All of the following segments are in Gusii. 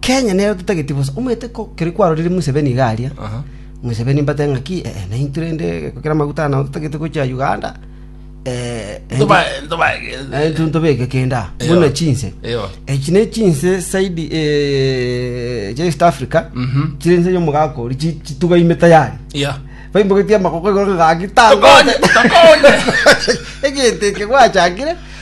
Kenya nero totageti bosa. Omanyete ko keri kwarorire Museveni iga aria, Museveni mbatebie ng'aki, eh, naintwe rende gokera amaguta nao totagete gochia Uganda, eh, naintwe- Ntoba- ntoba- naintwe ntobeke kende aa, Eyo. buna chinse. Eyo. Echi ne chinse saidi eh, chia East Africa, Mhm. chire nse y'omogaka oria, chi- chitugaime tayari. Yeah. Baimbogetie amagoko igoro ng'aki, Tokonye, tokonye. egento eke gwachakire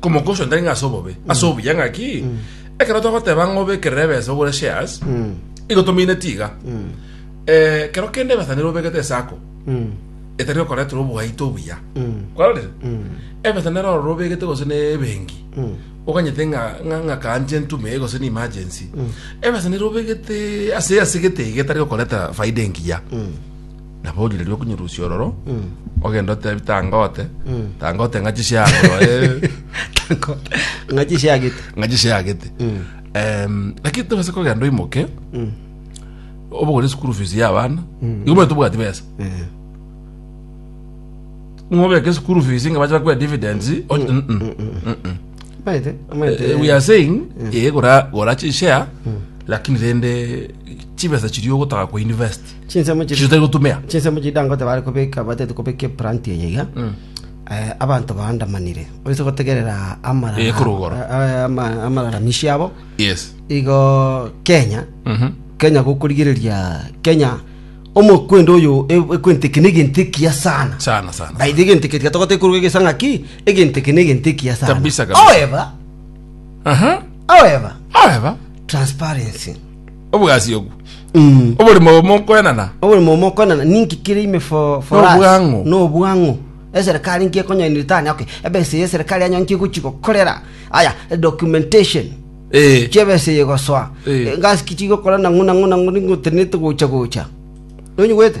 Komoka ocio ntarenge ase obobe, ase obuya ng'aki? Ekero twagoteba ng'a obekerere ebesa ogore shares, igo tomineti iga. Eh, kero kende ebesa nero obegete esako, etari okoretera obwaito obuya. Kwarorire? Ebesa nero ororo obegete gose ne ebenki, oganyete ng'a ng'a ng'a kanche ntume eye gose ne emergency. Ebesa nero obegete ase ase gete iga etari gokoretera faida engiya. Nabo origereria okonyerusia ororo, ogende otebi tangote, tangote ng'a chisiago roe, ng'a chisiagete ng'a chisiagete. Em, Lakini tobase kogenda oimoke, obogore school fees ya abana, igo bono tobwati besa. Ng'a obeke school fees ng'a bache bakwe dividends, o- mm, mm, mm, mm. maete maete Eh, we are saying eh, gora gora chishare lakini rende chibesa chiria ogotaka ku invest Chinsemo chiri- chitari gotumea chinsemo chiri dangote bare kobeka batete kobeka eplanti eye iga eh, abanto baandamanire oise gotegerera amarara- Eh, korogoro. eh, ama- amararamishi abo yes igo kenya Mhm. kenya gokorigereria kenya omokwendo oyo e- ekwenteke na egento ekiya sana sana sana baithe egento eke tiga togoteka koruga egesanga ki egento eke na egento ekiya sana Kabisa, kabisa. however aha however however transparency obogasi obwo Mm. oborimo obo mokoenana oborimo mokonana ninki kire ime for for us? Nobwang'u. nobwang'u eserikali nki ekonyoiniri tani okay ebesa eye eserikali yanyo nki egochi gokorera aya documentation Eh, chiebesa eye gosoa Eh. ngasi ki chigokora nang'u nang'u nang'u ningotenete gocha gocha nonyigwete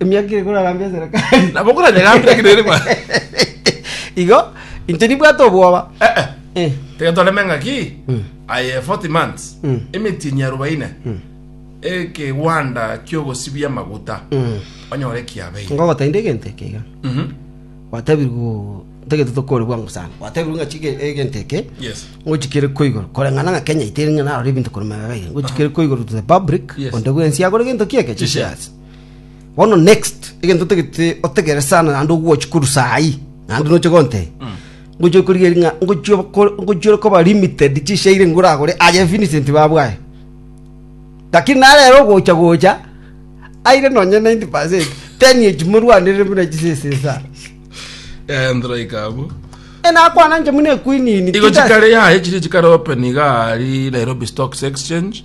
Emiaka ere korarambia eserekari. Nabo koranyegambia ki nere ba? Igo, inche nibwate obwoba. Eh, eh. Eh. Tiga toreme ng'aki Mm. aye 40 months Mm. emetienyi arobaine ekegwanda kiogosibia amaguta Mm. onyore kiabeire Ngogotainda egento eke iga. Mhm. Gwatebirwe ntagete tokore bwango sana. Gwatebirwe ng'a chige egento eke. yes ngochikere ko igoro koreng'ana ng'a kenya itere ng'a narore ebinto korwa magega iga ngochikere ko igoro to the public Yes. onde bwensi agore gento kieke Chishares. chishares bono next egento otagete otegere sana naende ogwochi korwa saa hii naende noche gonte ngochi okorigeria ng'a ngochi okor- ngochi ore koba limited chishairi nigo oragore aye Vincent babu aye lakini nare ere ogocha gocha aire nonye 90 percent ten echi morwanerire buna chisesa esa Eh, nthraika abwo enakwana inche buna equinini igo chikare yaye chiri chikare open iga ari nairobi stocks exchange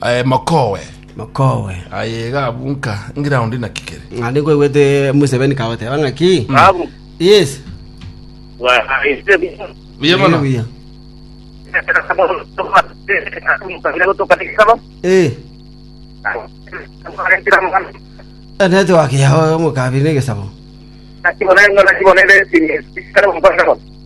Aye mokowe. Mokowe. Aye iga abunka ngiraundi naki kere. Ng'a nikoigwete Museveni kagoteba ng'aki. Babu. Yes. Bwahaise biya. Buya mono. Buya. Eh. Eh, Network yao omokabiri negesabo.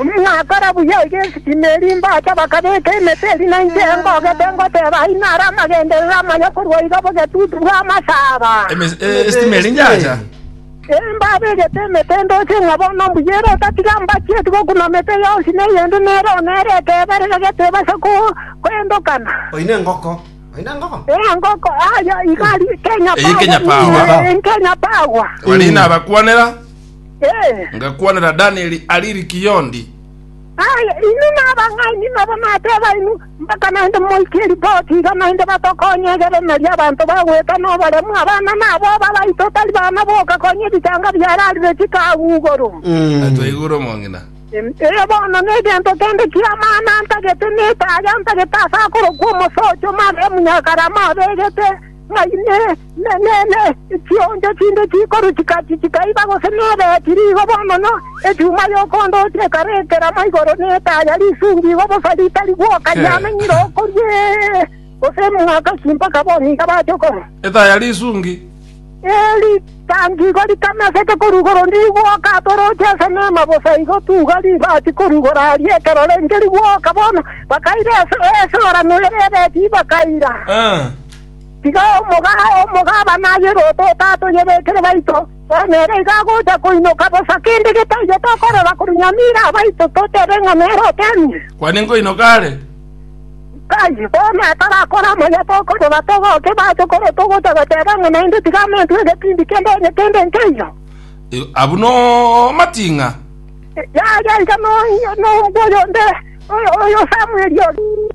Mwakora buya iga esisimi eria imbacha bakabeka emete eria na inche ngogete ngoteba ai naro amagenderero amaya korwa iga bogetutu bw'amasaaba. Esisimi eria inyacha. Imbabegete emete ndoche ng'a bono mbuya ere otatiga mbachieti gokuna mete yonsi na eyende nere oo nere ekeberero gete ebase koendokana. Oine engoko. Engoko aye iga ari Kenya Power. Kenya Power. Barina abakwanera. Eh. Ngakwanera Danieli aria Irikiondi. Aye, inwe nabang'aini nabo nateba inwe, mpaka naende moike eripoti iga naende batokonye egere nari abanto bagweta noboremu, abana nabo ababaito tari bana boka konya ebichanga biararire chikagugoro. Na twaigure omong'ina. Em, Eye bono negento kende ki'amana ntagete netaaya ntagete ase akorokwa omosocho Mariamu Nyakarama abegete ng'ai ne Inee! Chioncho chinde chikoruchika chichikaiba gose nebe chiri igobo mono? Echuma y'okondochia ekare ekerama igoro ne etaya risungi igo bosa ritari gwoka riamenyire okorua ee, gose emwaka ki mpaka boni iga bache okorua? Etaya risungi. Ee, ritangi igo ritameseke korwa igoro ndiri gwoka atoroche ase neema bosa igo tuga ribachi korwa igoro aria ekero renge rigwoka bono. Bakaira esorano ere ebe chibakaira. Tiga omogabana aye rototo atoyebekere baito, onye ere igo agocha koinyoka bosa kende getaiyo tokorora korwa nyamira abaito totebe ng'a nere oteemire. Kwane nkoinyoka are. Nkai, bono atarakore amaya tokorora togoke bache korwa togocha goteba ng'a naende tiga amentwe egetindi kende onye kende nkeiyo. Igo abwo nomating'a. Yaya iga nombua oyonde, oyo Samweli oria.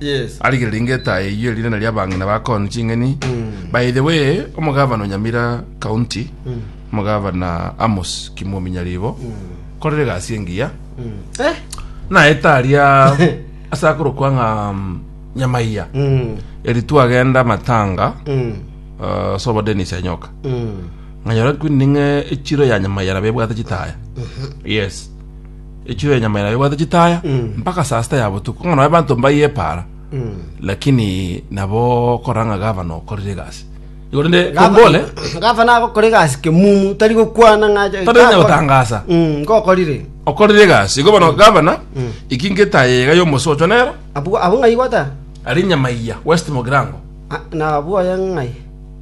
Yes. arigereri ngeta eyio erinana ria abang'ina ba Con ching'eni by the way omogavana onyamira county omogavana Amos Kimuomi Nyaribo korire egasi engiya Eh. naete aria ase akorokwa ng'a mm, nyamaiya Mm. eri twagenda matanga Mm. uh, sobo Dennis Anyoka Mm. nganyora kwini ning'e echiro ya nyamaiya nabebwate chitaya yes echiro ya nyama ere ebwate chitaya Mm. mpaka saa sita ya botuko ng'a nonye abanto mbayie epaara Mm. lakini nabo okorora ng'a gavana okorire egasi igo rende kongole gavana agokora egasi kemumu tari gokwana ng'a ache- Tari gakora. gotangasa. Mm, ngokorire okorire egasi igo bono gavana Mm. iki ngetaye iga yomosi ocho nero abu abu ng'ai gwata ari nyama iya west mogirango Ah, na abu oye ng'ai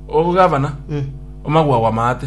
ogo gavana Mm. omagwa gwamaate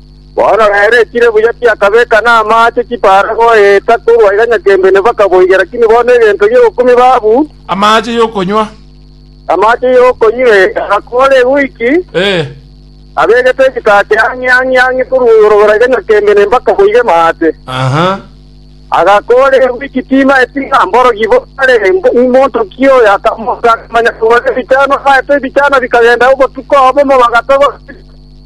Bono rero ekire buya tiakabeka namaache chipaara goeta korwa iga nyaka embene mpaka boiga, lakini bono egento gi'ogokumia babu, Amaache y'okonywa. amaache y'okonywa ee, agakora ewiki, Ee. abegete egetati ang'e ang'e ang'e korwa igoro gora iga nyaka embene mpaka boiga emate. Aha. Agakora ewiki timaeti ng'a mborogi bo are mbo- monto ki oyo, akamoka akamanya kogora ebichano, amaete ebichano bikagenda obotuko obomo bagatogora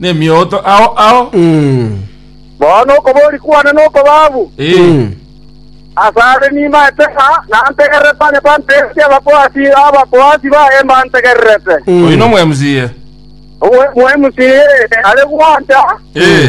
nemioto ao ao. Bono okobori kwane nokobabu. Ee. Asare nimaete ng'a nantegererete onye tantegeretie Abakohati, Abakohati baye mbantegererete. Oyo nomoemsiye. Omoemsiye are gwancha. Ee.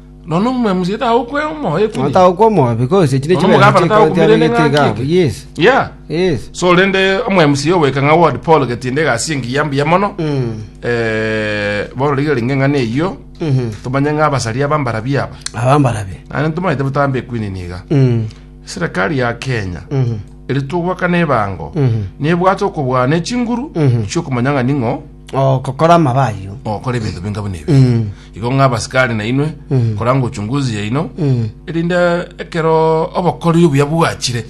Nonya omomwemisia tagokwa omoyo ekuri. Nonya tagokwa omoyo because echi ne Nonya chibesa omogabana tagokumira ene ng'aki chikotiamegete eke. Yes. Yeah. Yes. So rende omwemisia ogoika ng'a ward Paul Getinde egasi ye engiya mbuya mono. Mm. Eh, bono rigira ringe eng'ana eyio, Mhm. tomanye ng'a abasari aba mbarabi aba. Aba mbarabi. Naende ntomaete botambe ekwinini iga. Mm. Serikali ya Kenya Mhm. eri togwakana ebango Mhm. nebwate okobwana echinguru Mhm. chiokomanya ng'a ning'o Ogokora amaba ayio. Ogokora ebinto binga buna ebi. Igo ng'a abasikari na inwe, koranga uchunguzi yaino, erinde ekero obokoreri obuya bwachire,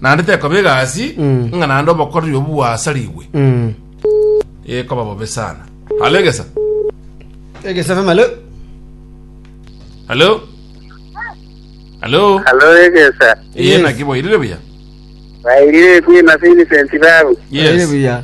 naende tekoba egasi ng'a naende obokoreri obwo bwasarigwe, ekoba bobe sana. Halo egesa. Egesa FM, halo. Halo. Halo. Halo egesa. Iye Yes. naki boirire buya. Bairire kwina Vincent babu. Yes. Yes. Buya.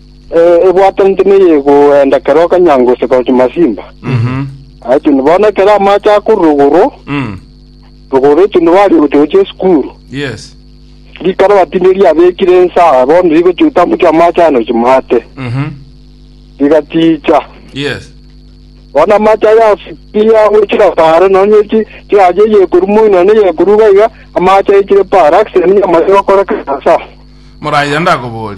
ebwatanete neyegoenda kera okanyango gose gocha masimba aitune bono ekero amache akorwa rogoro Mm. rogoro aitune bari gocha esukuru Yes. rikaro batinde riabekire ensaa bono rigocha otambukia amache ano chimate Mhm. rigaticha Yes. bono amache aya afikia gochira paaro nonye chi chiaje yekoru moi nonye yekoru gaiga amache aichire paaro accident yamache gokora kansa Moraya ndakobori.